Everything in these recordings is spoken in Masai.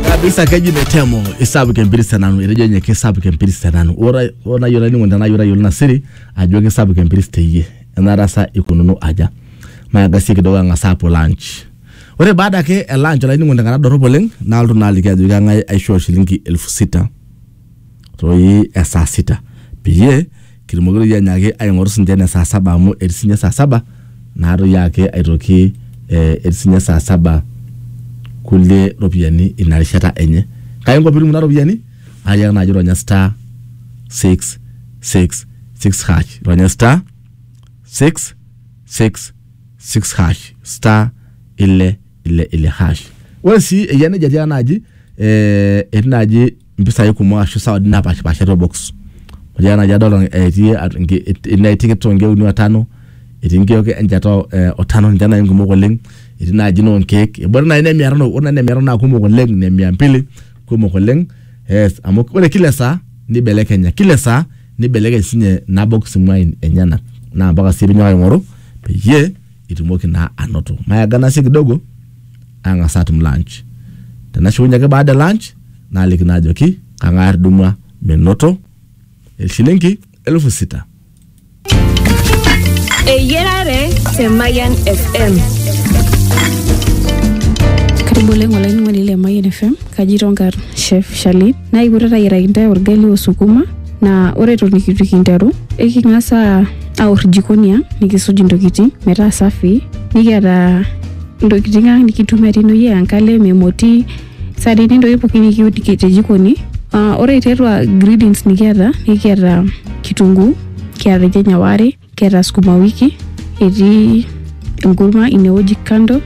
kabisa keji metemo isapuk empirisi tenanu etejo ninye kisapuk empirisi tenanu ore ore nayiolo ainining'oni tenaa ore ayiolo ina siri ajo kisapuk empirisi teyie enaata sa ikununo aja maagasie kidogo ang'as aapuo lunch ore baada ake e lunch olainining'oni tenkata dorrop oleng nalotu naa aliki ajo keng'ae aishoo shilingi elfu sita toi esaa sita peyie kitumoki toi anyaaki aing'oru sinche ene saa saba amu etii sinye saa saba naa toi ake aitoki eh, etii sinye saa saba kulie ropiyiani ina rishata enye kai inko piitum kuna ropiyiani ayiak naaji ronya star 666 hash ronya star 666 hash star ile ile ile hash ore sii eyia nejia tiaa naaji eh, etii naaji mpisai kumok ashu sawadini napaashipaasha to box. Ore ena naji adolta etii atua nki enetii nkeek to nkeek uni o tano, etii nkeek encheta o tano ninche nai nkumok oleng', etii naaji noo nkeek ebore nai ne mia tano, ore nai ne mia tano naa kumok oleng' ne mia mbili kumok oleng' ees amu kore kila saa nibelekenya kila saa nibelekeny sinye ina box imuain enyenak naa mpaka sii piinyo aing'oru peyie itumoki naa anoto. Maeganasi kidogo. ang'as atum lunch. Tenashukunye ake baada e lunch naaliki naa ajoki kang'ae atudumua menoto eshilingi elfu sita. Eyiarare te Mayian FM. Karibu oleng olainining'oni le Mayian FM kaji tonkar chef Shalin naa ipoito tayiaraki intae orgali o sukuma naa ore eton itu kinteru eking'as aa- aor jikoni ang nikisuj intokitin metaa safi nikiata ntokitin ang nikitumia tinewueji aa enkalem emoti isaanini ntokitin pookin nikiun te- te jikoni Ah, ore tiatua ingredients nikiata nikiata kitunguu kiata irnyanya waare kiata sukuma wiki etii enkurma inewueji kando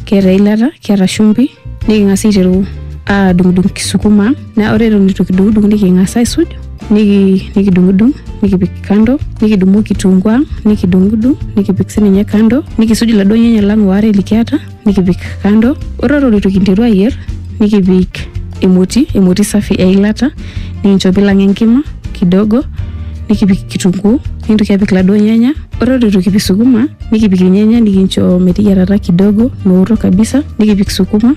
kiata eilata kiata shumbi niking'as aiteru adung'udung kisukuma ang naa ore eton itu kidung'udung niking'as aisuj niki nikidung'udung nikipik kando nikidumu kitunguu ang nikidung'udung nikipik sininye kando nikisuj iladuo nyanya lang waare likiata nikipik kando ore eton itu kinteru ayierr nikipik emoti emoti safi eilata nikincho pilang enkima kidogo nikipik kitunguu nintoki apik iladuo nyanya ore eton itu kipik sukuma nikipik irnyanya nikincho meteyiarata kidogo meoto kabisa nikipik sukuma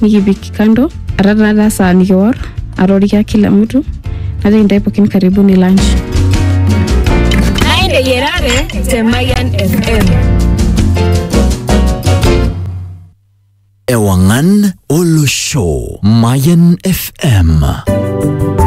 nikipik kando ata taata saa nikiwor atorikia kila mtu najoki intae pookin karibuni lunch Naende Yerare te Mayan FM. Ewangan Olosho. Mayan FM.